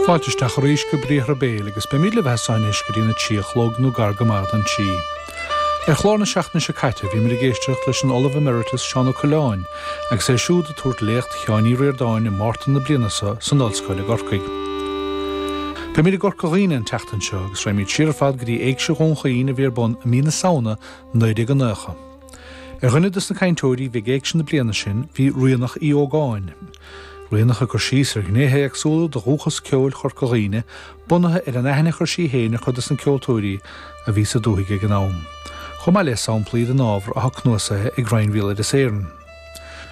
Fáilte isteach arís go Briathra Béil agus beimid libhse anois go dtí na trí a chlog nó gar go maith don trí. Ar chlár na seachtaine seo caite bhí muid ag éisteacht leis an Ollamh Emeritus Seán Ó Coileáin agus é siúd ag tabhairt Léacht Sheáin Uí Ríordáin i Márta na bliana seo san Ollscoil i gCorcaigh. Beimid i gCorca Dhuibhne an tseachtain seo agus raghaimid siar ar fad go dtí Éigse Dhún Chaoin a bhí ar bun i mí na Samhna 1990. Ar dhuine des na cainteoirí a bhí ag Éigse na bliana sin bhí Ríonach Uí Ógáin, Ríonach ag cur síos ar ghnéithe éagsúla de dhúchas ceoil Chorca Dhuibhne bunaithe ar an aithne a chuir sí féin ar chuid des na ceoltóirí a bhí sa dúthaigh ag an am, chomh maith le samplaí den ábhar atá cnuasaithe ag Roinn Bhéaloideas Éireann.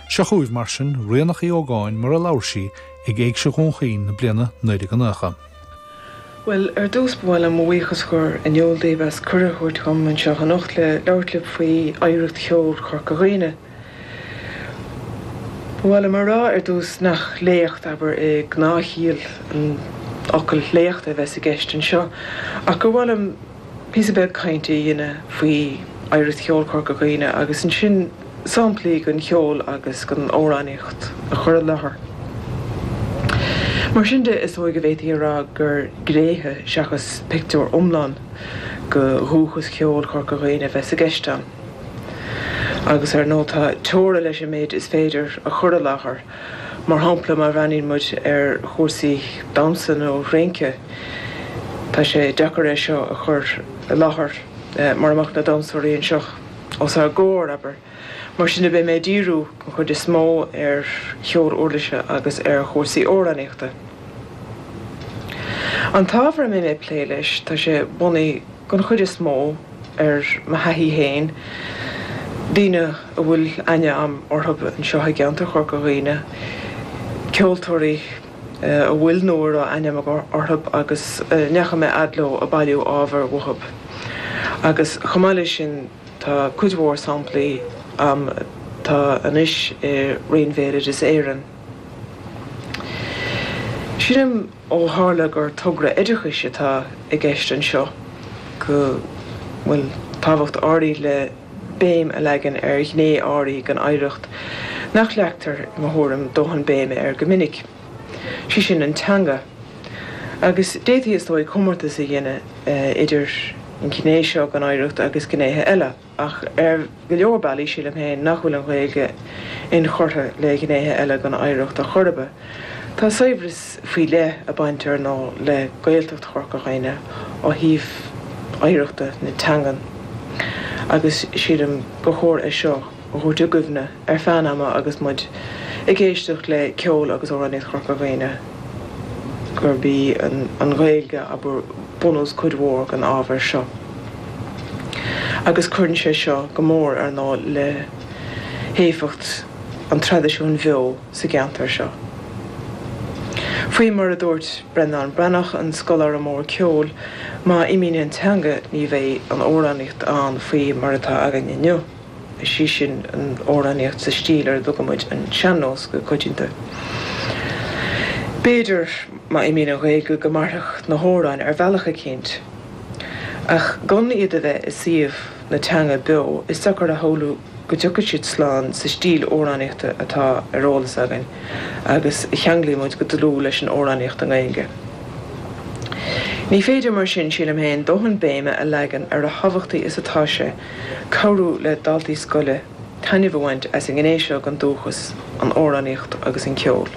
Seo chugaibh, mar sin, Ríonach uí Ógáin mar a labhair sí ag Éigse Dhún Chaoin na bliana 1990. Bhuel, ar dtús ba mhaith liom mo bhuíochas a chur in iúl daoibh as cuireadh a thabhairt dhom anseo anocht le labhairt libh faoi oidhreacht cheoil Chorca Dhuibhne. Ba mhaith liom a rá ar dtús nach léacht, abair, i ngnáthchiall an fhocail léacht a bheas i gceist anseo ach gur mhaith liom, píosa beag cainte a dhéanamh faoi oidhreacht cheoil Chorca Dhuibhne agus ansin samplaí den cheol agus den amhránaíocht a chur i láthair. Mar sin de, is dóigh go bhféadfaí a rá gur gnéithe seachas pictiúr iomlán de dhúchas ceoil Chorca Dhuibhne a bheas i gceist ann. Agus ar ndóigh tá teora leis an méid is féidir a chur i láthair. Mar shampla, má bhreathnaíonn muid ar chúrsaí damhsa nó rince, tá sé deacair é seo a chur i láthair mara mbeadh na damhsóirí anseo os ár gcomhair, abair. Mar sin de, beidh mé ag díriú den chuid is mó ar cheol uirlise agus ar chúrsaí amhránaíochta. An t-ábhar a mbeidh mé ag plé leis, tá sé bunaithe, den chuid is mó, ar mo thaithí féin, daoine a bhfuil aithne agam orthu anseo i gceantar Chorca Dhuibhne, ceoltóirí a bhfuil nó a raibh aithne agam orthu agus a ndeachaigh mé fhad leo ag bailiú ábhair uathu. Agus chomh maith leis sin, tá cuid mhór samplaí agam atá anois i Roinn Bhéaloideas Éireann. Sílim. ó tharla gur togra oideachais atá i gceist anseo, go bhfuil tábhacht áirithe le béim a leagan ar ghné áirithe den oidhreacht nach leagtar, i mo thuairim, dóthain béime air go minic, sé sin an teanga. Agus d'fhéadfaí, is dóigh, comórtas a dhéanamh idir an ghné seo den oidhreacht agus gnéithe eile. ach ar go leor bealaí sílim féin nach bhfuil an Ghaeilge inchurtha le gnéithe eile den oidhreacht ar chor ar bith. Tá saibhreas faoi leith ag baint ar ndóigh le Gaeltacht Chorca Dhuibhne ó thaobh oidhreachta na teangan agus sílim gur chóir é seo a thabhairt i gcuimhne ar feadh an ama agus muid ag éisteacht le ceol agus amhránaíocht Chorca Dhuibhne gurb í an Ghaeilge ab ea bunús cuid mhór den ábhar seo. agus cuireann sé seo go mór, ar ndóigh, le héifeacht an traidisiúin bheo sa gceantar seo. Faoi mar a dúirt Breandán Breathnach, an scoláire mór ceoil, má imíonn an teanga ní bheidh an amhránaíocht ann faoi mar atá againn inniu, is í sin an amhránaíocht sa stíl ar a dtugaimid an sean-nós go coitianta. B'fhéidir, má imíonn an Ghaeilge, go mairfeadh na hamhráin ar bhealach eicínt. Ach gan iad a bheith i suíomh na teanga beo, is deacair a shamhlú go dtiocfaidh siad slán sa stíl amhránaíochta atá ar eolas againn agus a cheanglaímid go dlúth leis an amhránaíocht i nGaeilge. Ní féidir mar sin, sílim féin, dóthain béime a leagan ar a thábhachtaí is atá sé cabhrú le daltaí scoile taitneamh a bhaint as an ngné seo den dúchas, an amhránaíocht agus an ceol.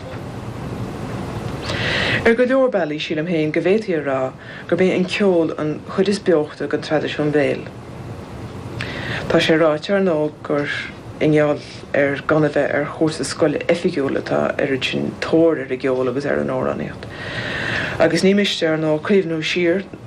Ar go leor bealaí, sílim féin go bhféadfaí a rá, gurb é an ceol an chuid is beocha den traidisiún béil. Tá sé ráite ar ndóigh gur i ngeall ar gan a bheith ar chúrsa scoile oifigiúil atá an oiread sin tóir ar an gceol agus ar an amhránaíocht. Agus ní miste, ar ndóigh, cuimhniú siar,